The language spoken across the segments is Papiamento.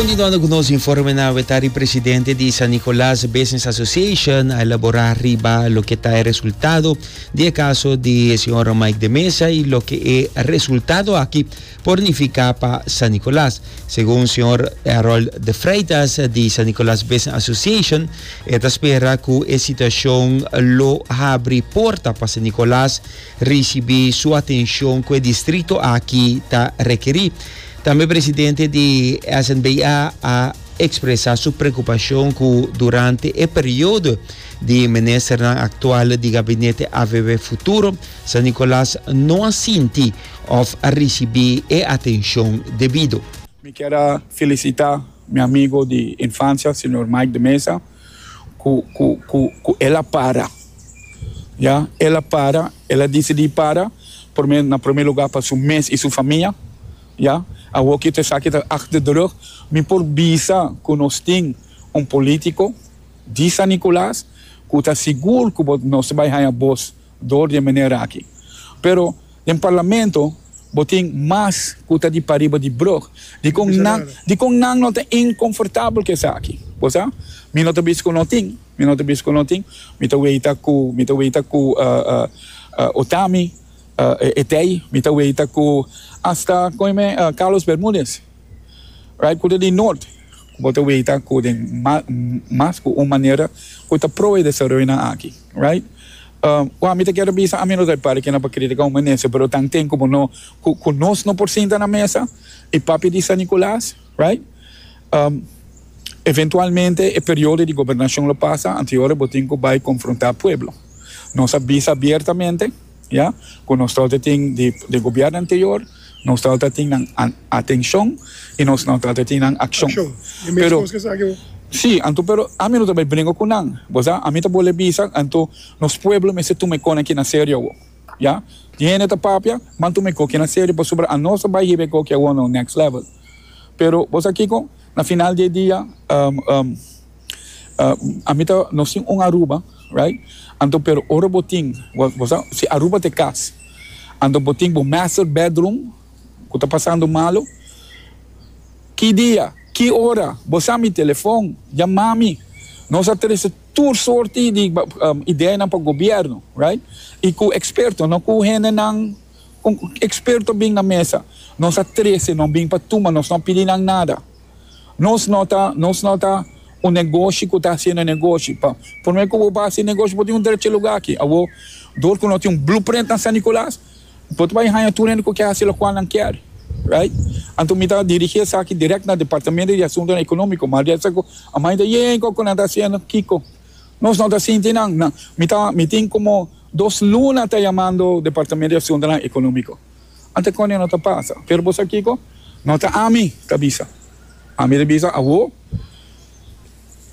Continuando cu nos informenan, we ta di presidente di San Nicolas Business Association a elabora riba loke ta e resultado di e caso di e señor Mike de Meza y loke e resultado aki por nifica pa San Nicolas. Segun señor Harold de Freitas di San Nicolas Business Association e ta spera cu e situacion lo habri porta pa San Nicolas ricibi su atencion cu e distrito aki ta requeri. Tambe presidente di SNBA a expresa su preocupacion cu durante e periodo di ministernan actual di gabinete avb futuro, San Nicolas no a sinti of a ricibi e atencion debido. Mi kier a felicita mi amigo di infancia, señor Mike de Meza. Ku, ku, ku, ku el a para. Ya, el a para, el a disidí para, promé, na promé lugá pa su mes i su famia. Ya, awor ku esaki ta achter de rug, mi por bisa ku nos tin un polítiko di San Nikolaas ku ta sigur ku bo, nos ta bai haña bos dor di e manera aki. Pero den Parlamento bo tin mas ku ta di pariba di brug. Dikon nan, dikon nan no ta inkonfortabel ku esaki? Bo sa, mi no ta bisa ku no tin, mi no ta bisa ku no tin. Mi ta weita ku, mi ta weita ku Otami, Etey, mi ta weita ku asta, kon e men, Carlos Bermudez, right, ku ta di Nort. Bo ta weta cu den mas cu un manera cu ta pro e desaroyonan aki, right? Wou, ami ta kere bisa, ami no ta e parti kinan pa critica un minister, pero tan tin cu bo no, cu nos no por sinta na mesa y papia di San Nicolas, right? Eventualmente e periodo di gobernacion lo pasa, antes y ora bo tin cu bay confronta pueblo. Nos a bisa abiertamente. Ya cu nos trote tin di di gobierno anterior, nos trote a tin nan atencion y nos no trote a tin nan accion. Pero, si, anto pero ami no ta bay bringo cu nan. Bo sa, ami ta bol'e bisa, anto nos pueblo mester tuma e con aki na serio awo. Ya, tin hende ta papia, Ban tuma e coki na serio pasobra anos ta bay hiba e coki awo na un next level. Pero, bo sa kico? Na final di e dia, um, um, Ami ta nos tin un Aruba right anto pero ora bo tin si Aruba ta e cas anto bo tin bo master bedroom cu ta pasando malo ki dia ki ora bo sa mi telefon jamami nos a trece tur sorti di ideanan pa gobierno right y cu experto no cu hendenan experto a bin na mesa nos a trece nos bin pa tuma nos no a pidi nan nada. Nos no ta, nos no ta un negoshi ku ta hasiendo negoshi. Pa promé ku bo bai hasi negoshi, bo tin un derecha lugá aki. Awor, dor ku no tin un blueprint na San Nicolas, bo ta bai haña tur hende ku ke hasi lokual nan kier. Right? Anto mi ta dirigí esaki dirèkt na Departamento di Asuntonan Ekonómiko. Maria ta sako, Amai ta yei ku nan ta hasiendo. Kiko? Nos no ta sinti nan. Mi ta, mi tin komo dos luna ta yamando Departamento di Asuntonan Ekonómiko. Ante konde no ta pasa. Pero bo sa kiko? No ta ami ta bisa. Ami ta bisa awo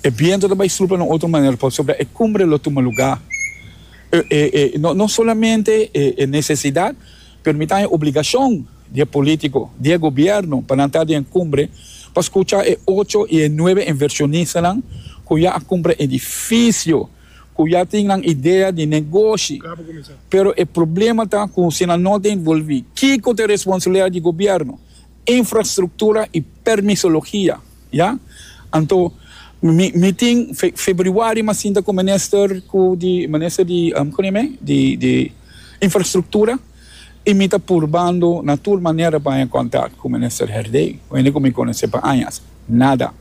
e bientu ta bai supla na otro manera pasobra e kumbre lo tuma lugá. No solamente e nesesidat pero mi ta haña obligashon di e polítiko, di e gobièrnu pa nan ta den e kumbre pa skucha e ocho i e nuebe invershonistanan ku ya a kumpra edifisio. cu ya tin nan idea di negoshi, pero e problema ta cu si nan no ta involvi, kico ta e responsabilidad di gobierno? Infrastructura y permisologia, ya? Anto, mi, mi tin fe, februari m'a sinta cu minister cu di, minister di, um, con eme? Di, di Infrastructura y mi ta purbando na tur manera pa haña contact cu minister Herdey, hende cu mi conoce pa añas. Nada.